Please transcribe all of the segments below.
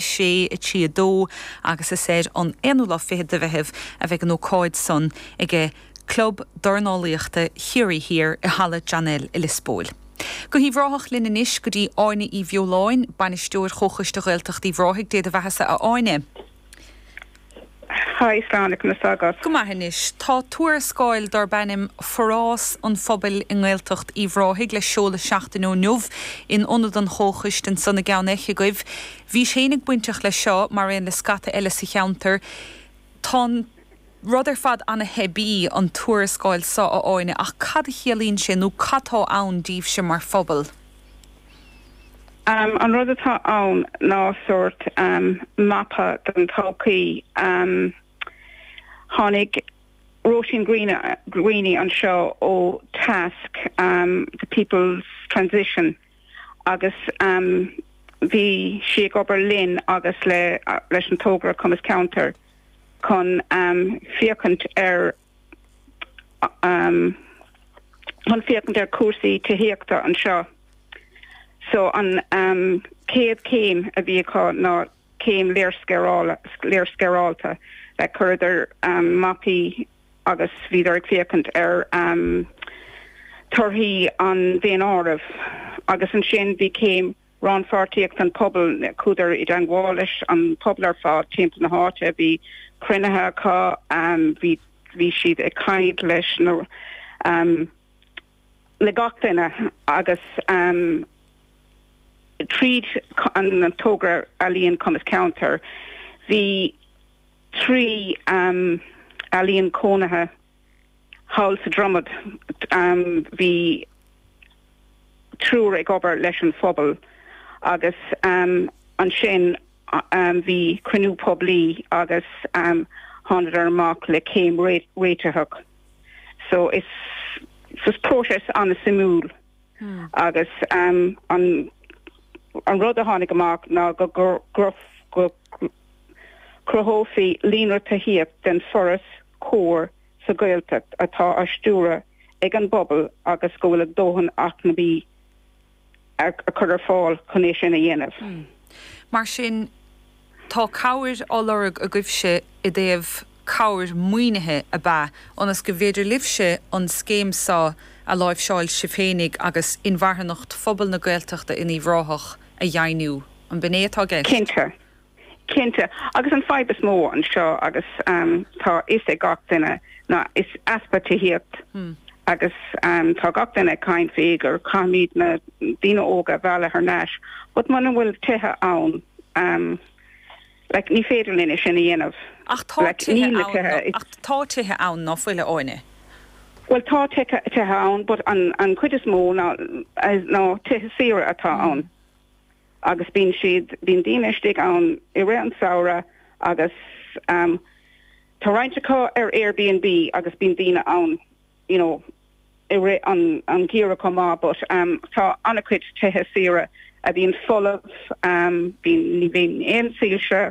sé a trí a dó agus is ar an aonú lá fichead de Mheitheamh a bheidh an ócáid san ag Club Dornálaíochta Chiarraí Thiar i Halla John L. i Lios Póil. Go hUíbh Ráthach linn anois go dtí Áine Uí Bheoláin, Bainisteoir Chomhchoiste Ghaeltacht Uíbh Ráthaigh. Dé do bheathasa a Áine. Haigh Sláine conas tá agat. Go maith anois. Tá tuarascáil darb ainm 'Forás an Phobail i nGaeltacht Uíbh Ráthaigh' le seoladh seachtain ó inniu in Ionad an Chomhchoiste ansan i gCeann Eich agaibh. Bhís féinig bainteach leis seo mar aon le scata eile sa cheantar. Tá an rud ar fad ana-theibí, an tuarascáil so, a Áine, ach cad a chiallaíonn sé nó cad tá ann daoibhse mar phobal? An rud atá ann ná sórt mapa don todhchaí. Tháinig Róisín Greaney anseo ó Tasc, The People's Transition agus bhí sí ag obair linn agus leis an togra Cumas Ceantar chun féachaint ar chun féachaint ar chúrsaí tithíochta anseo. So an chéad céim a bhí acu ná céim léarscáilithe. Chuireadar mapaí agus bhíodar ag féachaint ar torthaí an Daonáirimh agus ansin bhí céim Rannpháirtíocht an Phobail, chuadar i dteangmháil leis an pobal ar fad timpeall na háite, bhí cruinnithe acu, bhí bhí siad ag caint leis na le gach duine agus tríd an togra Ealaíon Cumas Ceantar bhí trí ealaíon cónaithe, thall sa Dromaid, bhí triúr ag obair leis an phobal agus ansin bhí cruinniú poiblí agus thánadar amach le céim réiteach. So is is próiseas an-suimiúil agus an an rud a tháinig amach ná go go go go cruthófaí líonra tithíocht don forás cóir sa Ghaeltacht atá á stiúradh ag an bpobal agus go bhfuil a dóthain acmhainní á cur ar fáil chun é sin a dhéanamh. Mar sin, tá cabhair á lorg agaibhse i dtaobh cabhair maoinithe ab ea ionas go bhféidir libhse an scéim so a láimhseáil sibh féinig agus inmharthanacht phobal na Gaeltachta in Uíbh Ráthach a dheimhniú. An b'in é atá i gceist? Cinnte. Cinnte, agus an fadhb is mó anseo agus tá a fhios ag gach duine ná is easpa tithíocht agus tá gach duine ag caint faoi gur caithfimid na daoine óga a mhealladh thar n-ais but muna bhfuil tithe ann like ní féidir linn é sin a dhéanamh. Ach tá tithe ann, ach tá tithe ann ná fuil, a Áine? Bhuel tá tithe ann but an chuid is mó ná tithe saoire atá ann. agus bíonn siad, bíonn daoine istigh ann i rith an samhradh agus ehm tá roinnt acu ar Airbnb agus bíonn daoine ann you know i rith an an gheimhreadh chomh maith but ehm tá an-chuid tithe saoire a bhíonn folamh ehm bíonn, ní bhíonn aon soilse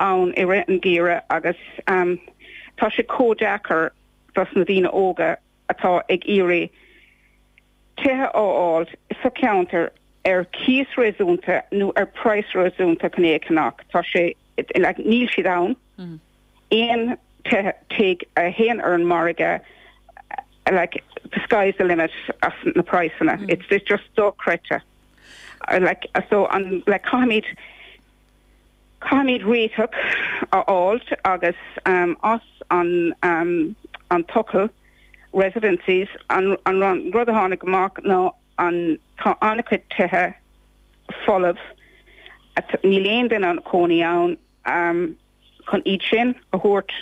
ann i rith an gheimhreadh agus ehm tá sé chomh deacair dos na daoine óga atá ag iarraidh tithe a fháilt sa cheantar ar chíos réasúnta nó ar praghas réasúnta chun é a cheannach. Tá sé, níl siad ann, aon tithe, tigh a théann ar an margadh, like, the sky is the limit ar na praghsanna, it's just dochreidte. Like, so, an, like, caithfimid, Caithfimid réiteach a fháilt agus as an an tochailt, residencies, an rud a tháinig amach ná tá an-chuid tithe folamh, níl aon duine ina gcónaí ann, chun iad sin a thabhairt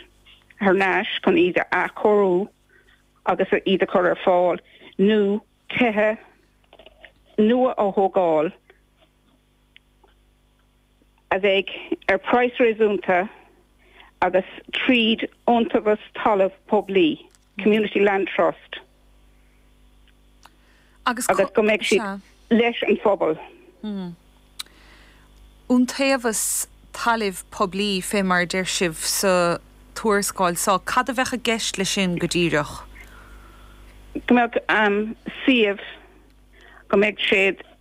thar n-ais, chun iad a athchóiriú agus iad a chur ar fáil nó tithe nua a thógáil. a bheidh ar phraghas réasúnta agus tríd iontaobhas talamh poiblí, Community Land Trust, agus go mbeidh siad leis an phobal. Iontaobhas talaimh poiblí, féibh mar a deir sibh sa tuarascáil so, cad a bheadh i gceist leis sin go díreach? Go mbeadh suíomh, go mbeidh sé.